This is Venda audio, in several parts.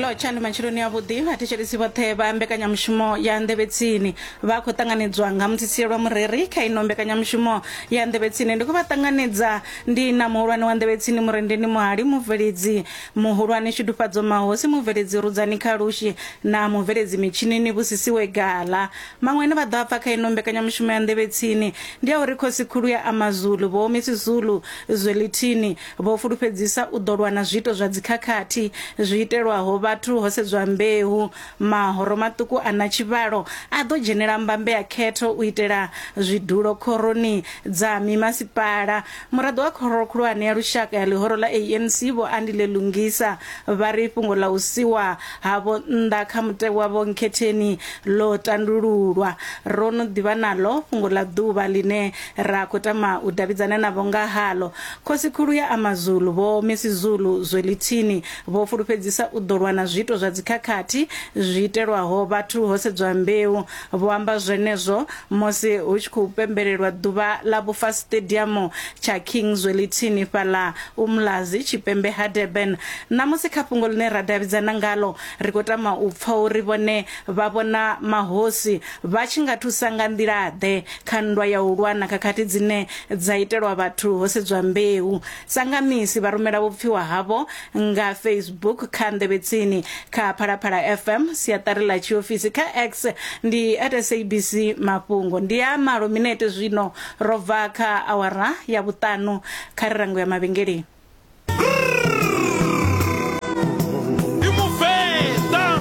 lotsha ndi matshiloni avhuḓi vhathetshelesi vhoṱhe vha mbekanyamushumo ya nḓevhetsini vha khou ṱanganedzwa nga mutsitsie lwa mureri kha ino mbekanyamushumo ya nḓevhetsini ndi khou vha ṱanganedza ndi na muhulwane wa nḓevhetsini murendeni muhali mubveledzi muhulwane tshidufhadzo mahosi mubveledzi rudzani kha lushi na mubveledzi mitshinini vhusisiwe gala maṅwe ane vha ḓo a pfa kha ino mbekanyamushumo ya nḓevhetsini ndi a uri khosi khulu ya amazulu vho misi zulu zwelithini Vho fulufhedzisa u ḓo lwa na zwiito zwa dzikhakhathi zwi itelwaho vhathu ho sedzwa mbeu. Mahoro maṱuku a na tshivhalo a ḓo dzhenela mbambe ya khetho u itela zwidulo khoroni dza mimasipala. Muraḓo wa Khoro Khulwane ya Lushaka ya ḽihoro ḽa ANC, Vho Andile Lungisa, vha ri fhungo ḽa u siwa havho nnḓa kha mutevhe wa vhonkhetheni ḽo tandululwa. Ro no ḓivha naḽo fhungo ḽa ḓuvha ḽine Ra khou tama u davhidzana navho nga haḽo. Khosi-khulu ya Amazulu, Vho Misizulu Zwelithini, vho fulufhedzisa u ḓo lwa na zwiito zwa dzikhakhathi zwi itelwaho vhathu ho sedzwa mbeu. Vho amba zwenezwo musi hu tshi khou pembelelwa ḓuvha ḽa vhufa siṱediamu tsha King Zwelithini fhaḽa Umlazi, tshipembe ha Durban. Ṋamusi kha fhungo ḽine ra davhidzana ngaḽo, ri khou tama u pfa uri vhone vha vhona mahosi Vha tshi nga thusa nga nḓila-ḓe kha nndwa ya u lwa na khakhathi dzine dza itelwa vhathu ho sedzwa mbeu? Sa nga misi, vha rumela vhupfiwa havho nga Facebook, kha nḓevhetsini, kha Phalaphala FM, siaṱari ḽa tshiofisi, kha X, ndi at SABC Mafhungo. Ndi ya malo minete zwino ro bva kha awara ya vhuṱanu kha ri rango ya mavhengeleni.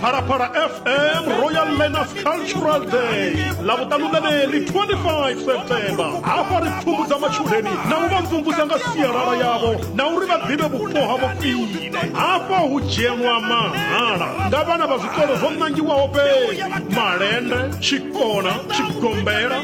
Phalaphala FM Royal Learners Cultural Day lavutanu leri 25 September hafha ri pfhumbudza matshudeni na u vha mvumvusa nga sialala yavho na uri vha ḓivhe vhupo havho khwine hafha hu dzhenwa mahala nga vhana vha zwikolo zwo nangiwaho fhedzi malende tshikona tshigombela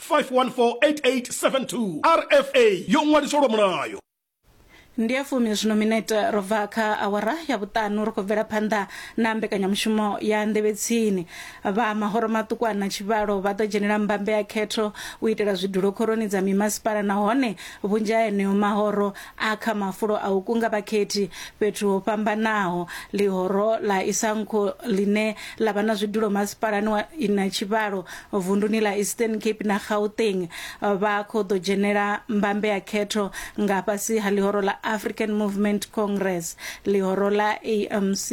5148872 rfa yo ṅwaliswa lwa mulayo ndi ya fumi zwino minete ro bva kha awara ya vhuṱanu ri khou bvela phanḓa na mbekanyamushumo ya nḓevhetsini vha mahoro maṱuku a na tshivhalo vha ḓo dzhenela mbambe ya khetho u itela zwidulo khoroni dza mimasipala nahone vhunzhi ha eneo mahoro A Kha mafulo a u kunga vhakhethi fhethu ho fhambanaho, ḽihoro ḽa Isankho ḽine ḽa vha na zwidulo masipalani wa Inatshivhalo, vunduni ḽa Eastern Cape na Gauteng, vha khou ḓo dzhenela mbambe ya khetho nga fhasi ha ḽihoro ḽa African Movement Congress. Ḽihoro ḽa AMC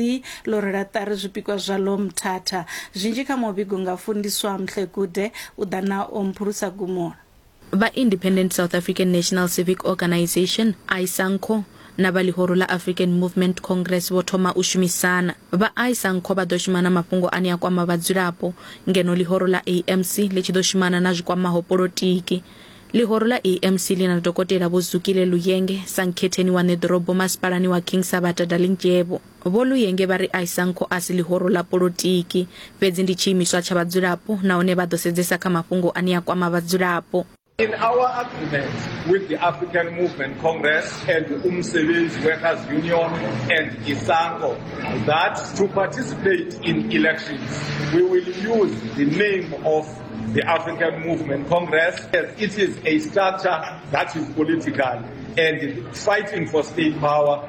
ḽo rwela ṱari zwipikwa zwaḽo Mthatha. Zwinzhi kha muvhigo nga Fundiswa Mhlekude u ḓa na Omphulusa Gumula. Vha Independent South African National Civic Organisation, ISANCO, na vha ḽihoro ḽa African Movement Congress vho thoma u shumisana. Vha ISANCO vha ḓo shuma na mafhungo ane a kwama vhadzulapo, ngeno ḽihoro ḽa ANC ḽi tshi ḓo shumana na zwi kwamaho polotiki. Ḽihoro ḽa ANC ḽi na Dokotela Vho Zukile Luyenge sa nkhetheni wa ṋeḓorobo masipalani wa King Sabata Dalindyebo. Vho Luyenge vha ri Isangco a si ḽihoro ḽa polotiki, fhedzi ndi tshiimiswa tsha vhadzulapo nahone vha ḓo sedzesa kha mafhungo ane a kwama vhadzulapo. In our agreement with the African Movement Congress and Umsebenzi Workers Union and Isanco that to participate in elections we will use the name of the African Movement Congress as it is a structure that is political and fighting for state power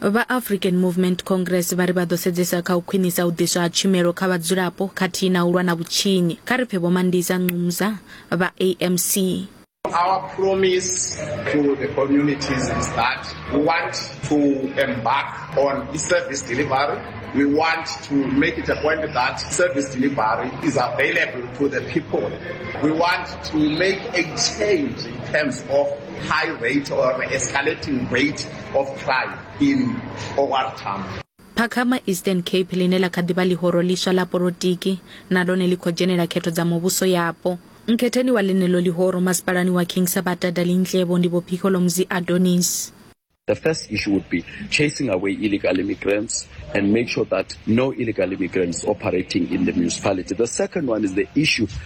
Vha African Movement Congress vha ri vha ḓo sedzesa kha u khwinisa u ḓiswa ha tshumelo kha vhadzulapo khathihi na u lwa na vhutshinyi. Kha ri pfe Vho Mandisa Nqumza vha AMC. Our promise to the communities is that we want to embark on service delivery. We want to make it a point that service delivery is available to the people. We want to make a change in terms of high rate or escalating rate Phakhama, Eastern Cape, ḽine ḽa kha ḓi vha ḽihoro ḽiswa ḽa polotiki, na ḽone ḽi khou dzhenela khetho dza muvhuso yapo. Nkhetheni wa ḽeneḽo ḽihoro masipalani wa King Sabata Dalindyebo ndi Vho Phikholomuzi Adonis. The first issue would be chasing away illegal immigrants and make sure that no illegal immigrants operating in the municipality. The second one is the issue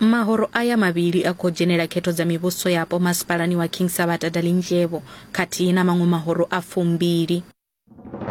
Mahoro aya mavhili a khou dzhenela khetho dza mivhuso yapo masipalani wa King Sabata Dalindyebo khathihi na maṅwe mahoro a fumbili.